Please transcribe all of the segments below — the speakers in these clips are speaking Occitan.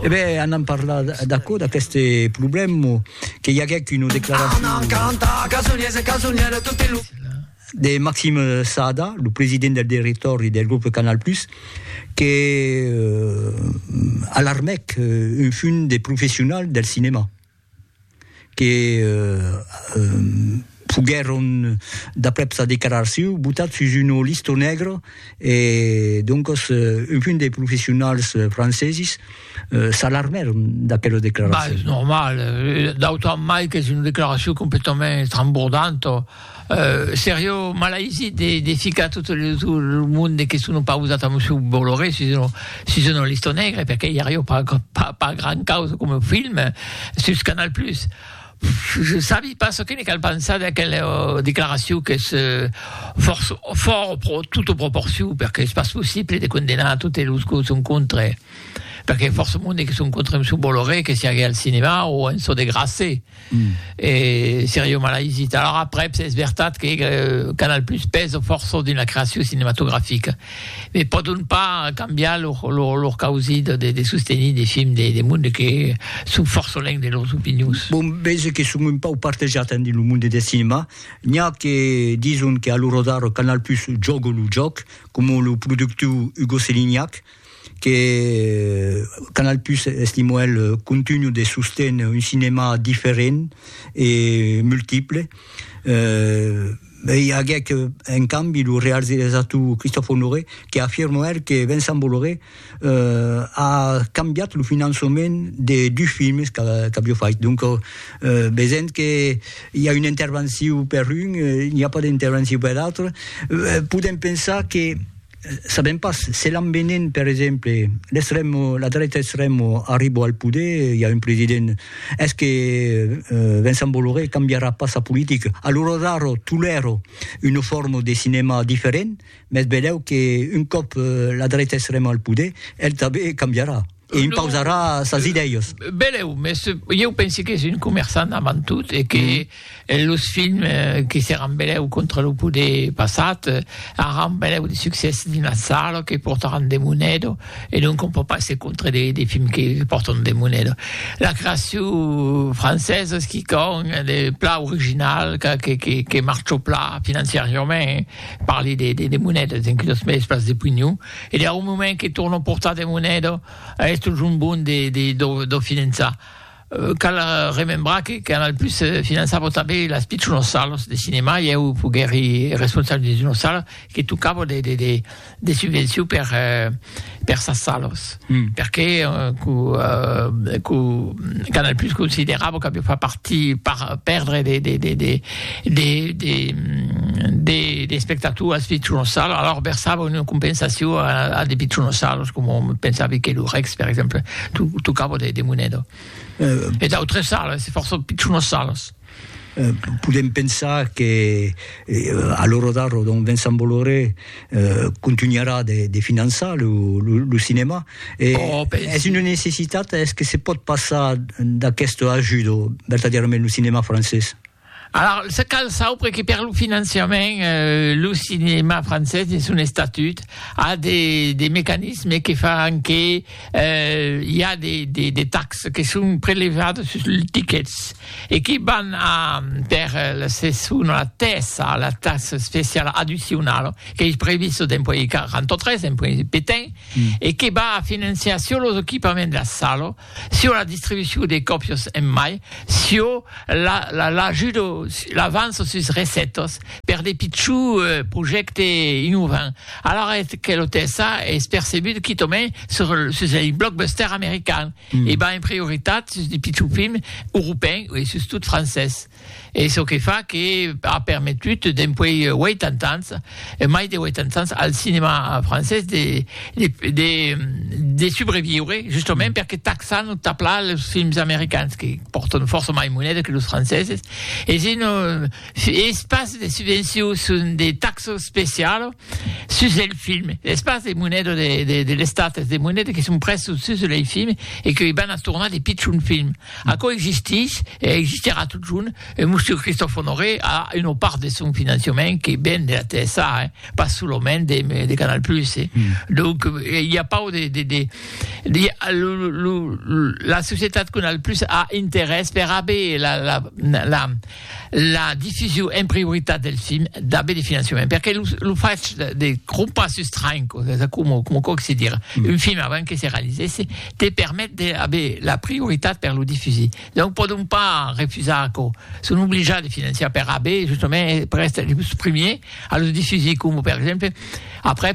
E ben, anam parlar d'aquò, d'aquest problema, que i aguèc una declaracion... Anam cantar casoniers e casonières tot e lo... De Maxime Sada, lo president del directòri del grup Canal Plus, que alarmèc un fum de professionals del cinema. que foguèron, d'aprèp sa declaracion, botats sus una lista negra e doncas un punt de professionals francesis s'alarmèron d'aquela declaracion. Bah, es normal, d'autant mai qu'es una declaracion completament estrambordanta. Serio malaisit de ficar tot lo monde que son opausat a Monsieur Bolloré sus una lista negra, perque i ario pas gran causa coma film sus Canal Plus. Je sabi pas çò que ne cal pensar d'aquela declaracion qu'es fòrt tota proporcion, perque es pas possible de condenar totes los que son contre, perque fòrça monde que son contre Monsieur Bolloré que siague al cinema o en çò de grasser. Mm. E Sergio Malaizit. Alors après, es veritat que euh, Canal Plus pèsa fòrça dins la creacion cinematografica, me pòdon pas cambiar lor, lor, lor causit de, de sostenir de films de, de monde que son fòrça lèng de lors opinions. Bon, veja que son un pau partejat en dins lo monde de cinema. N'hi a que dison que a lo rodar Canal Plus jògo lo jòc, com lo productiu Hugo Selignac, que Canal Plus estimo el contunho de sosten un cinema diferent e multiple eh e i aguec en cambi lo rearziresator Christophe Honoré que afirmo er que Vincent Bolloré eh a cambiat lo finançament de dus films qu'avió fait donc vesent que i a una intervencion per un i a pas d'intervencion per l'autre podem pensar que Sabèm pas, se l'envenin per exemple l'extremo, la dreta extremo arribo al poder, i a un president, es que Vincent Bolloré cambiarà pas sa politica? Alura daro tolèro una forma de cinema diferent, mes velèu que un còp la dreta extrema al poder, el tanben cambiarà. E impausarà sas idèias. Belèu, mès ieu pensi qu'es un comerçant avant tot e que los films que seràn belèu contra lo poder passat aràn belèu de succès dins las salas, que portaràn de moneda e donc on pòt pas èsser contra de films que pòrtan de moneda. La creacion francesa es quicòm de plan original que marcha plan financiariament, parli de monedas, enquia los mèdies pas de pignon. E dau moment que torno portar de moneda a esto jombon de de do do finançar, cal remembrar que Canal Plus finançava tanben las pichonas salas de cinema, e eu foguèri responsable dins una sala que tocava de de de de subvencion per per sas salas. Perque Canal Plus considerava qu'aviá fach partir per perdre de espectators pichons sal, alors versava una compensacion a de pichons sals, coma pensavi que lo Rex, per exemple, tocava de moneda. E d'autres sales, fòrça pichons sales. Podem pensar que a l'ora d'ara donc Vincent Bolloré contunharà de finançar lo cinèma e es una necessitat, es que se pòt passar d'aquesta ajuda vertadièrament lo cinèma francés? Alors se cal saupre que per lo finançament lo cinèma francés dins son estatut a de mecanismes que fan que i a de taxes que son prelevades sus los tiquets e que van per la seson a tèsa la taxa especiala addicionala qu'ei prevista dens puèi 43, dens puèi petain, e que va financiar sus los equipaments de sala, sus la distribucion de còpias en mai, sus l'avança sus recètas per de pichons projèctes innovants. Alara eth que lo TSA es percebut quitòmen sus ei blockbuster american e va en prioritat sus de pichons films europèn e sus tot francés. Es çò que fa que a permetut dempuèi 80 ans, mai de 80 ans, al cinèma francés de de subreviure justament perque taxan o taplan los films americans que pòrtan fòrça mai moneda que los franceses. Es un Es pas de subvencion, son de taxo specialo sus el film. Es pas de moneda de l'Estat, es de moneda que son prèstos sus lei film e que i van a tornar de pichon film. Aquò existís e existirà totjorn. E Monsieur Christophe Honoré a una part de son financiament que ven de la TSA, eh, pas solament de Canal Plus, eh. Donc, i a pas de, de, de, la societat Canal Plus a interès per aver la, la, la, la diffusion en prioritat del film d'aver de finançament perque lo, lo fach de, de crompar sus tranc o de como, como coc se dir mm. un film avant que se realisèsse te permet d'aver la prioritat per lo diffusir donc podon pas refusar que son obligats de financiar per haver justament per estar los premiers a los diffusir com per exemple après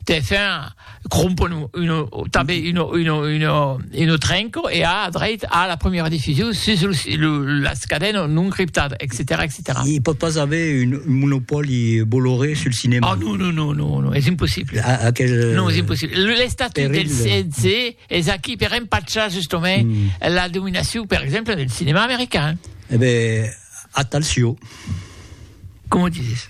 TF1 crompon un, tanben un, un, un, un trenco e a dreit a la premiera diffusion sus las cadenas non criptadas, etc. etc. Il pot pas haver un monopoli Bolloré sul cinema. Ah non, non, non, non, non, es impossible. A, aquel, non, es impossible. L'estatut del CNC es aquí per empatchar justament mm. la dominacion, per exemple, del cinema americain. Eh ben, attention. Comment tu dis